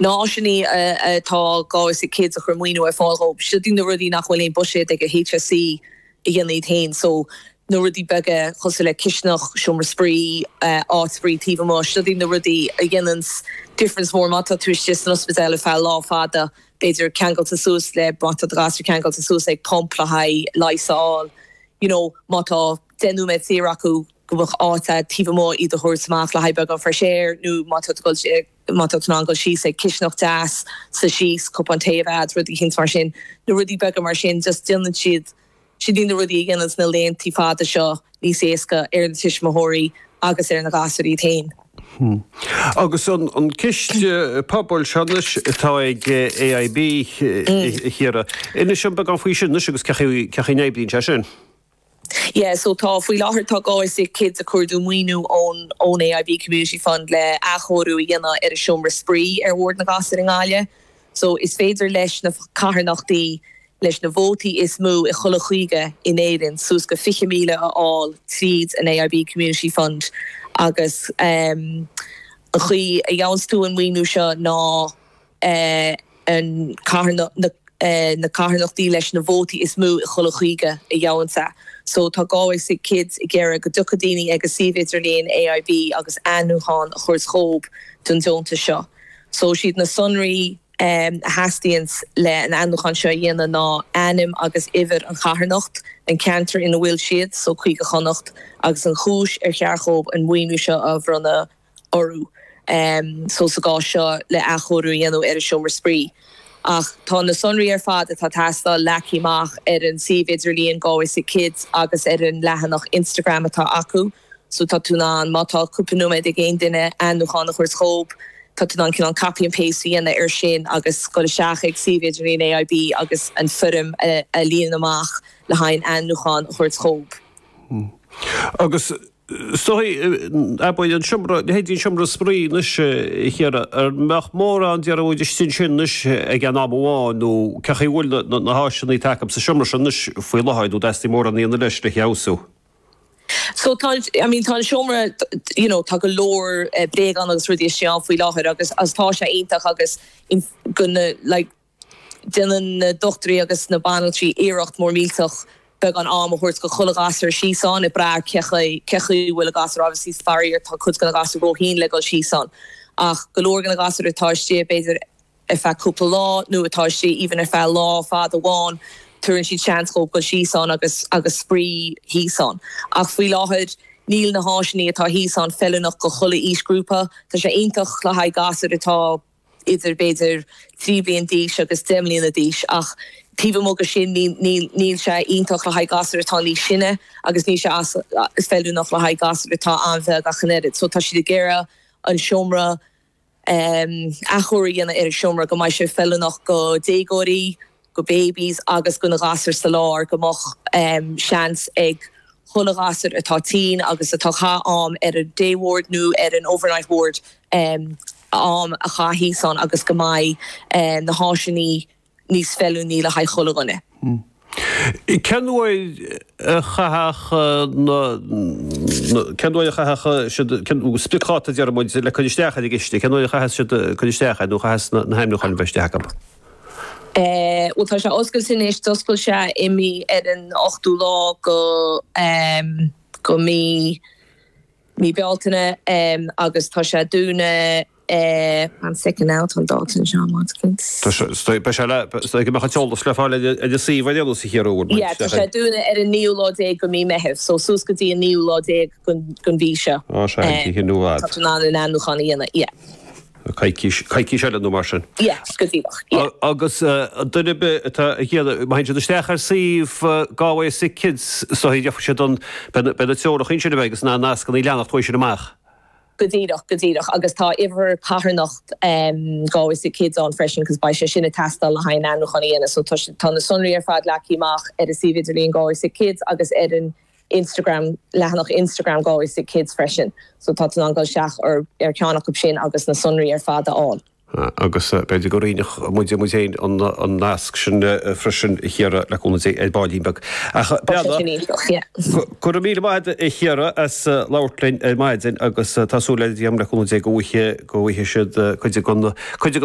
na háiseannaí atá Galway Sick Kids ag cur maoiniú ar fáil dhó. Seo iad na rudaí nach bhfuil aon buiséad ag an HSE a dhéanamh iad féin. So na rudaí beaga cosúil le cisteanach, seomra spraoi, áit spraoi taobh amuigh, seo iad na rudaí a dhéananns difference mór. Má tá tú istigh san ospidéal ar feadh lá fada, b'fhéidir ceangailte suas le, má tá do ghasúr ceangailte suas ag pump le haghaidh leigheas a fháil, you know, má tá deich nóiméad saor acu go mbeadh áit taobh amuigh iad a thabhairt amach le haghaidh beagán fresh air nó má tá tú ag dul Má tá tú in ann dul síos ag cisteanach deas, suí síos, cupán tae a bheith agat, rudaí eicínt mar sin, na rudaí beaga mar sin, just déanann siad seo iad na rudaí a dhéananns na laethantaí fada seo níos éasca ar na tuismitheoirí agus ar na gasúir iad féin. Agus an ciste pobail seo anois atá ag AIB, a Chiara, inis dhúinn beagán faoi sin anois agus cé chaoi a n-oibríonn sé sin? Yeah, so tá, faoi láthair tá Galway Sick Kids ag cuardú maoiniú ón ón AIB Community Fund le athchóiriú a dhéanamh ar an seomra spraoi ar ward na ngasúr i nGaillimh. So is féidir leis na carthanachtaí leis na vótaí is mó i chuile chúige in Éirinn suas go 20,000 a fháil tríd an AIB Community Fund agus ehm an chaoi a gheabhanns tú an maoiniú seo ná na carthanachtaí leis na vótaí is mó i chuile chúige a gheabhanns é. So tá Galway Sick Kids ag iarraidh go dtiocfadh daoine ag a suíomh idirlíon AIB agus ainmniúchán a thabhairt dhóib don deontas seo. So siad na sonraí a theastaíonns le an ainmniúchán seo a dhéanamh ná ainm agus uimhir an charthanacht, an ceantar ina bhfuil siad, so Cúige Chonnacht, agus an chúis ar cheart dhóib an maoiniú seo a bhronnadh. orthu so sa gcás seo le athchóiriú a dhéanamh ar an seomra spraoi. Ach tá na sonraí ar fad atá ag teastáil leagtha amach ar an suíomh idirlíon Galway Sick Kids agus ar an leathanach Instagram atá acu so tá tú in ann, má tá cúpla nóiméad ag aon duine, ainmniúchán a thabhairt dhóib. Tá tú in ann cineál copy and paste a dhéanamh ar sin agus dul isteach ag suíomh idirlíon AIB agus an foirm a líonadh amach le haghaidh an ainmniúchán a thabhairt dhóib. Agus Is dóigh, an mbeadh an seomra, leithéidí an seomra spraoi anois, a Chiara, an mbeadh mórán de rud istigh ansin anois ag aon am amháin nó cé chaoi a bhfuil na háiseannaí atá acu sa seomra sin anois faoi láthair nó an dteastaíonn mórán a dhéanamh leis le feabhsú? So tá an, I mean, tá an seomra, you know, tá go leor bréagán agus rudaí istigh ann faoi láthair agus tá sé iontach agus in, gonna, like, Déanann na dochtúirí agus na banaltraí iarracht mór millteach beagán am a thabhairt go chuile ghasúr síos ann, ag brath ar cé chaoi a bhfuil an gasúr obviously. Faraor, tá cuid de na gasúir róthinn le dul síos ann, ach go leor de na gasúir atá istigh b'fhéidir ar feadh cúpla lá, nó atá istigh even ar feadh lá fada amháin, tabharann siad seans dhóib dul síos ann agus agus spraoi thíos ann. Ach faoi láthair, níl na háiseannaí atá thíos ann feiliúnach go chuile aoisghrúpa. Tá sé iontach le haghaidh gasúir atá. idir b'fhéidir 3 bliain d'aois agus 10 mbliana d'aois ach taobh amuigh de sin níl sé iontach le haghaidh gasúir atá níos sine agus níl sé feiliúnach le haghaidh gasúir atá an-bheag ach an oiread so tá siad ag iarraidh an seomra athchóiriú a dhéanamh ar an seomra go mbeidh sé feiliúnach do dhéagóirí do babies agus do na gasúir sa lár go mbeadh seans ag chuile ghasúr atá tinn agus atá ag caitheamh am ar an day ward nó ar an overnight ward am a chaitheamh thíos ann agus go mbeidh na háiseanna níos feiliúnaí le haghaidh chuile dhuine. Cén uair a chaithfear, cén uair, cén spriocdháta a deir muid le cuir isteach ar an gciste, cén uair a chaithfeadh siad cuir isteach nó a chaithfeas na hainmniúcháin a bheith istigh acab? Bhuel, tá sé oscailte anois. D'oscail sé i mí, ar an 8ú lá de, de mí, mí Bealtaine agus tá sé ag dúnadh, one second now, tá an dáta anseo, one second. Tá sé, beidh sé le, beidh go mbeadh an t-eolas le fáil ar an suíomh a dhéanamh sa chéad uair. Yeah, tá sé ag dúnadh ar an naoú lá déag de mí Meitheamh, so suas go dtí an naoú lá déag den mhí seo. Ó, sea, oíche nua, fhad. Tá tú in ann an ainmniúchán a dhéanamh, yeah. coicís, coicís eile nó mar sin. Yes, go díreach, yeah. Agus duine ar bith atá ag éisteacht, má théann siad isteach ar suíomh Galway Sick Kids, dot ie, déarfadh siad an, beidh, beidh na treoracha ansin a bheith agus na nascanna a leanacht uaidh sin amach. Go díreach, go díreach agus tá uimhir carthanacht Galway Sick Kids ann freisin cos beidh sé sin ag teastáil le haghaidh an ainmniúchán a dhéanamh so tá, tá na sonraí ar fad leagtha amach ar an suíomh idirlín Galway Sick Kids agus ar an Instagram, leathanach Instagram Galway Sick Kids freisin so tá tú in ann dul isteach ar cheann acu sin agus na sonraí ar fad a fháil. Agus b'fhéidir go roinnfeadh muid muid féin an nasc sin freisin a Shorcha, le cúnamh Dé, ar ball beag. Ach go raibh míle maith agat a Shorcha as labhairt linn ar maidin agus tá súil le Dia, le cúnamh Dé, go bhfaighidh siad cuid den